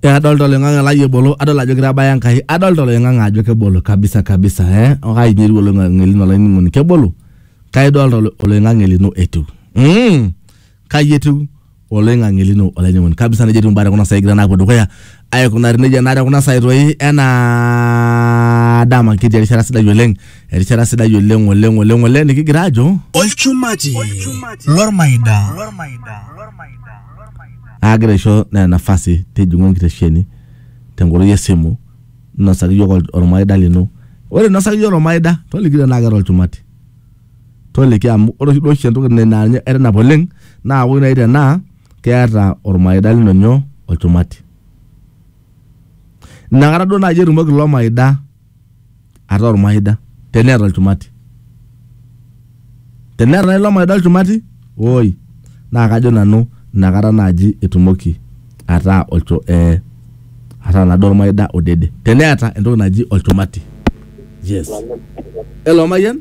Eh, adolta oloing'ang'e lai ebolo adol ajo kitabaya enkai adolta oloing'ang'e ajo kebolo kabisa kabisa eh okai nyeru oloing'ang'e lino olainining'oni kebolo kai idolta olo- oloing'ang'e lino etiu mm. kai etiu oloing'ang'e lino olainining'oni kabisa nejia etiu imbaa tekuna saai egira naapuo dukuya aikunari nejia naa tekuna saai toi enaa dama kitii erishata sidai oleng erishata sidai oleng oleng oleng oleng nikigira ajo olchumati lormaida aagira aisho nena nafasi tijing'u enkitesheni tenkoitoi esimu nosaki yiok ol- ormaida lino ore inosaki yiok ormaida toliki tenaa keeta olchumati toliki amu ore oshi duo oshi entoki naa ninye aitanap oleng naa woi nai tenaa keeta olmaida lino nyoo? Olchumati. Inakata duo naaji etumoki ilo maida ataa olmaida teneeta olchumati. Teneeta naaji ilo maida olchumati, woi, naa kajo nanu inakata naaji etumoki ataa olcho, eh, ataa naaduo olmaida odede. Teneeta entoki naji olchumati. Yes. Hello, mayian?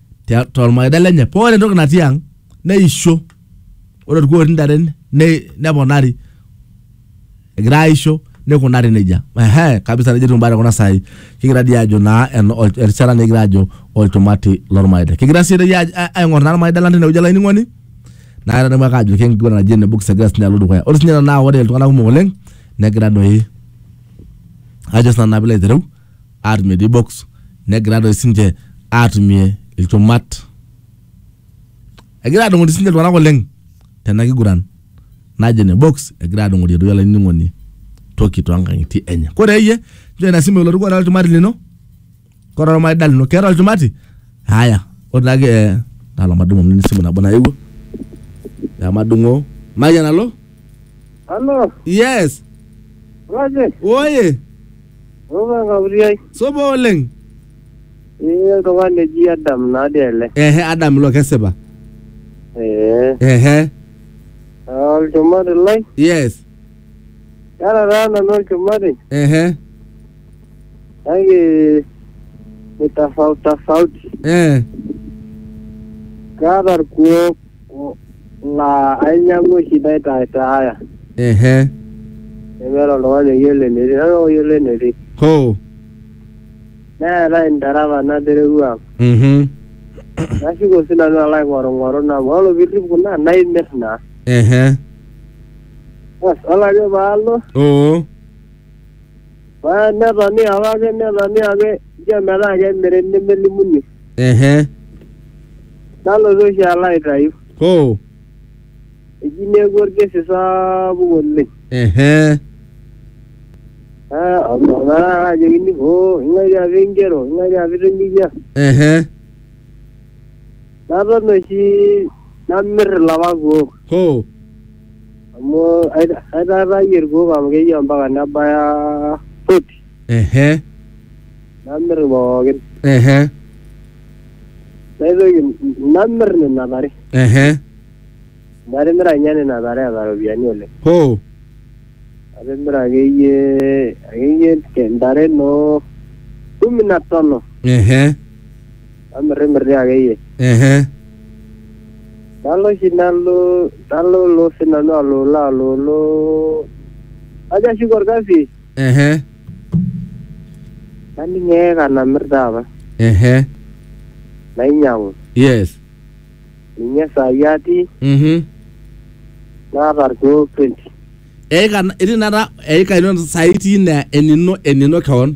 tia- tormaida lenye paa ore entoki natii ang neisho ore orkuo otii intare ne- neponari egira aisho nikunari nejia ehe kabisa nejia etiu imbaa tekuna saai kigira dii aajo naa en- ol- erishata nikigira aajo olchumati lormaida kigira sii doi aaj- a- aing'or naa irmaida lang tinewueji olainining'oni naa atadamu ake ajo kenkiguran naji ene books egira sinye alo dukuya ore sinye ena naa ore iltung'anak kumok oleng negira doi ajo sinanu naa piilo aitereu atumie dii box negira doi sinche atumie ilchumat. Egira adung'ori sinche iltung'anak oleng tena kiguran naji ene box egira adung'orie doi olainining'oni toki toonkang'itie enye. Kore iyie nchoo ina simu elotu kore olchumati lino, kore olmaida lino keeta olchumati? Haya, ore naake eh tala madung' amu esimu nabo naewuo, emadung'oo. Mayian alo? Halo, Yes! waje, Woye! Opa Kaputiai. Supa oleng. Ee oltung'ani eji Adam naadi ele. Ehe Adam ilo kesipa. Ee. Ehe. Olchumati lai. Yes. Kara taa nanu olchumati. Ehe. Kake ni tofauti tofauti. Eh. Kaata irkuoo. laa ainyang'u oshi naitaitaaya ehe nemeeta oltung'ani oyiolo enetii nanu ake oyiolo enetii hoo neetae intare apa naterewua ang mhm nashuko oshi nanu alo aing'orung'oru nabo ore piirrip kuna naimirr naa ehe bas ore ake paalo oo Ba- netoni apake netoni ake ijo metaa kemiri nemelimuni ehe nalotu oshi alo aitayu hoo eji neeku orkesi sapuk oleng ehe Ah, ometaa ajokini hoo ing'ae tiapa ingero ing'ae tiapa itinyikia ehe naton oshi namir ilapa kuok hoo amu aita- aitaatayie irkuok amu keyieu ampaka nebaya forty ehe namir pookin ehe naitoki namir nena tare ehe natimira ninye nena tare eeta iropiyiani oleng hoo atimira akeyie akeyie te- ntare noo kumi na tano ehe Amirrimir dii akeyie. Ehe. Nalo oshi nalo nalolo si nanu alolo alolo. Ajo ashuko orkasi Ehe. naning eeka namir taapa. Ehe. Nainyang'u. Yes. Ninye saai atii Mhm. naata irkeek 20. Eika itii inakata eika ino saai itii ina enino enino keon.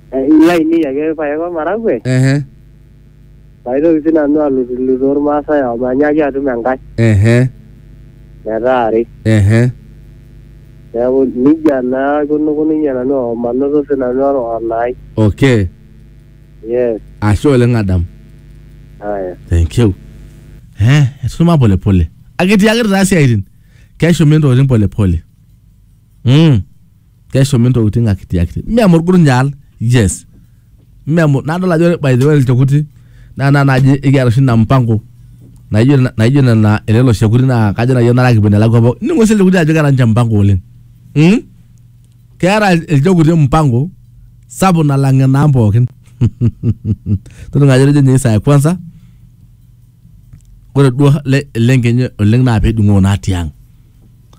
lainei ake irpaek o maragwe ehe paitoki sii nanu alutulutu ormaasai amu manyaaki atum enkae ehe metaa are ehe neeku nijia naa aikunukununye nanu omanoto sii nanu or- onaai okay yes ashe oleng adam aya thank you eh etusuma polepole akitiakita taa siaitin keshumi ntokitin polepole mm. keshumi ntokitin akitiakiti mme amu orgurnyaal yes mme amu nadol ajo ore by the way ilchekuti naa naa naaji ekiata oshi ina mpango naijo ina- naijo nena elelo shekuti naa kajo naaji enare kipuo enelakua pooki nining'o sii ilchekuti ajo keeta ninche mpango oleng mm? keeta ilchekuti mpango sapuk nalang enaang pookin todua ajo etejo ninye isaa e kwanza ore duo le- ele nkenye oleng naa pedung'oo naa tiang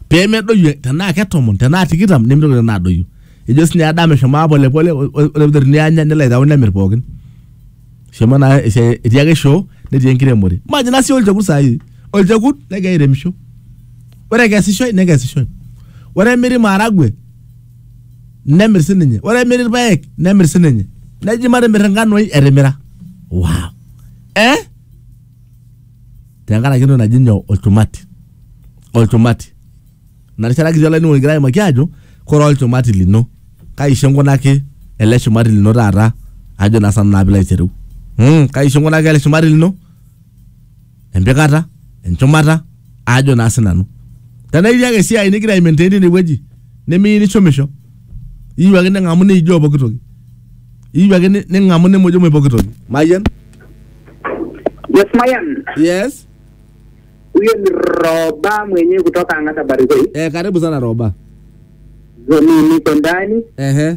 pemedoyio tenaa ketomon tenaa tikitam nemitoki nena adoyio ejo sinye Adam eshomo aa polepole o- o- ore piteruni anya nelo aitau nemirr pookin eshomo naa esiai etii ake shoo netii enkiremore majo ina sii olchekut saai olchekut negira airemisho ore ekesishoe nekesishoe ore emiri maharagwe nemirr sininye ore emiri irpayek nemirr sininye neji matimirr inkanoi etimira wow. eh? tenkaraki entoki naji nyoo olchumati olchumati ina rishata kitii olainining'oni kigira aimaki ajo kore olchumati lino kaisho inkunaki ele shumati lino taata ajo naa sanu naa pilo aitereu mm, kaisho inkunaki ele shumati lino empikata enchumata ajo naa sinanu tenaa itii ake esiai nigira aimaintain tine wueji nimiyieu nishomisho iyieu ake ning'amu niijoo pooki toki iyieu ake ni- ning'amu nimujumuj pooki toki mayian Yes, Mayan. yes Huyo ni Roba mwenyewe kutoka Angata Barikoi. eh, karibu sana roba Mimi niko ndani. ehe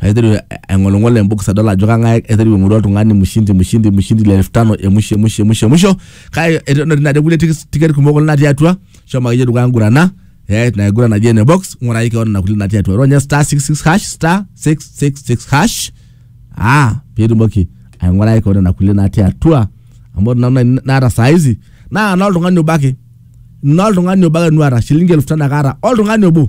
aiteru aing'oling'ol embokis adol ajo kang'ae aiteru aing'oru oltung'ani mshindi mshindi mshindi le elfu tano emusho emusho emusho emusho kake eton etii nade kulie tikis- tiket kumok oleng natii atua shomo akeyie dukuya ngurana eh, ina kiguran naji ene box ng'uraki kewon ina kulie natii atua ronya star 66 hash star 666 hash ah piitumoki aing'uraki kewon ina kulie natii atua amu ore nanu nai- naata saa hizi naa noltung'ani obo ake noltung'ani obo ake nuata shilingi elfu tano ake aata oltung'ani obo